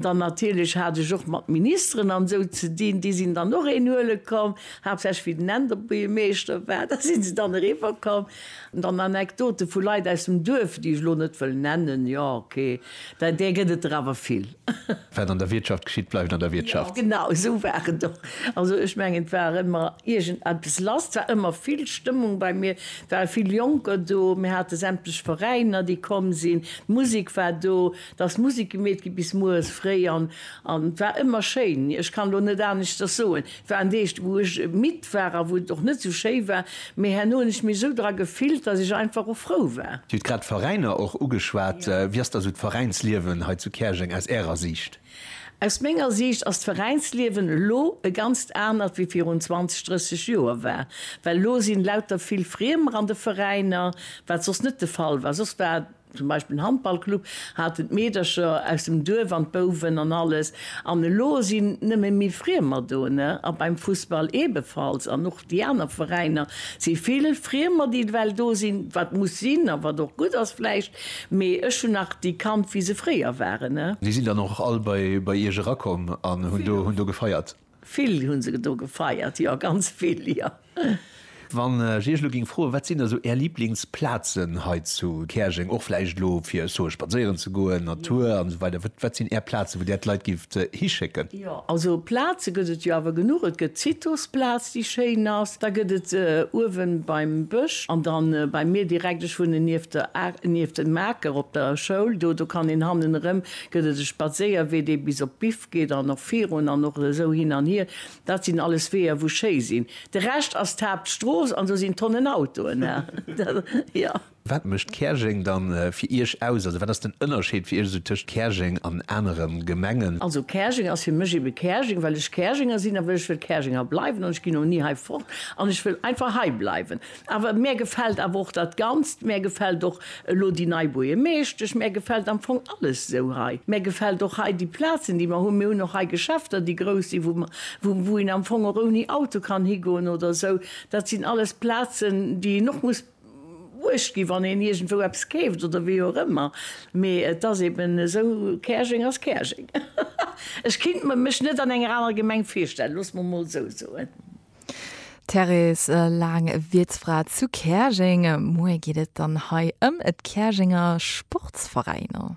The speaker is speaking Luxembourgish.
Dann natierlech hat ech och mat Ministeren an esou ze dinn. Déi sinn dann och een huele komm, haaptsächlech wéi den Enderbuergermeeschter war. Da si se dann eriwwer komm. An dann Anekdote vu Leit aus dem Duerf, déi ech elo net wëll nennen, jo okay, da där gëtt et der awer vill. Wat an der Wiertschaft geschitt, bleift an der Wiertschaft. Jo genau esou war et och. Also ech mengen et war ëmmer iergend eppes lass. Et war ëmmer vill Stëmmung bei mir. Et ware vill Jonker do. Mir hate sämtlech Veräiner, déi komm sinn. D'Musek war do. Da ass Musik gemeet gi bis mueres fréi an et war ëmmer schéin. Ech kann elo net aneschters soen. Et war en Deeg, wou ech midd war a wou et och net esou schéi war, mee herno hunn ech mech esou dra gefillt, dass ech einfach och frou war. Dir hutt grad d'Veräiner och ugeschwat. Wéi ass da esou d'Veräinsliewen hei zu Käerjeng aus Ärer Siicht? Aus menger Siicht ass d'Veräinsliewen elo e ganzt anert wéi virun 20, 30 Joer war. Well elo si lauter vill Friemer an de Veräiner, wat soss net de Fall war. Soss war. Zum Beispill den Handballclub haten d'Meedercher aus dem Duerf an d'Bouwen an alles. An elo sinn nëmme méi Friemer do, ne? A beim Fussball eebefalls. An och déi aner Veräiner si vill Friemer, déi ewell do sinn, wat muss sinn a wat och gutt ass vläicht. Mee ech hunn nach déi kannt, wéi se fréier waren, ne? Déi sinn dann och all bei Iech erakomm an hunn do gefeiert? Vill hunn se do gefeiert, jo, ganz vill, jo. Wann ech Iech elo géing froen, wat sinn da sou Är Liblingsplazen hei zu Käerjeng, och vläicht elo fir, ech soe spadséieren ze goen, Natur an esou weider, wat wat sinn Är Plazen, wou Där d'Leit géift hischécken? Jo, also Plaze gëtt et jo awer genuch. Et gëtt d'Citosplaz, déi schéin ass. Da gëtt et uewen beim Bësch an dann bei mir direkt, ech wunnen nieft der A, nieft dem Aker op der Schoul do, do kann een hannen erëm, gëtt et e Spadséierwee, dee bis op d'Bif Geet dann och virun an och esou hin an hier. Dat sinn alles Weeër wou schéi sinn. De Rescht ass d'Haaptstrooss an do sinn Tonnen Autoen, jo. Wat mécht Käerjeng dann fir Iech aus? Also wat ass den Ënnerscheed fir Iech esou tëscht Käerjeng an aneren Gemengen? Also Käerjeng ass fir mech ebe Käerjeng, well ech Käerjenger sinn a well ech wëll Käerjenger bleiwen an ech ginn och ni hei fort an ech wëll einfach hei bleiwen. Awer mär gefält awer och dat Ganzt, mär gefält och elo déi nei Buergermeeschtesch, mär gefält am Fong alles esou hei. Mär gefält och hei déi Plazen, déi mer hunn. Mir hunn och hei Geschäfter, déi grouss sinn, wou mer, wou, wou een am Fong och ouni Auto kann higoen oder esou. Dat sinn alles Plazen, déi een och muss uecht ginn, wann een iergendwou eppes keeft oder wéi och ëmmer. Mee et ass eeben esou, Käerjeng ass Käerjeng. Ech kinnt mer mech net an enger anerer Gemeng virstellen, loosse mer emol esou soen. D'Thérèse Lang, Wiertsfra zu Käerjeng. Muer geet et dann hei ëm d'Käerjenger Sportsveräiner.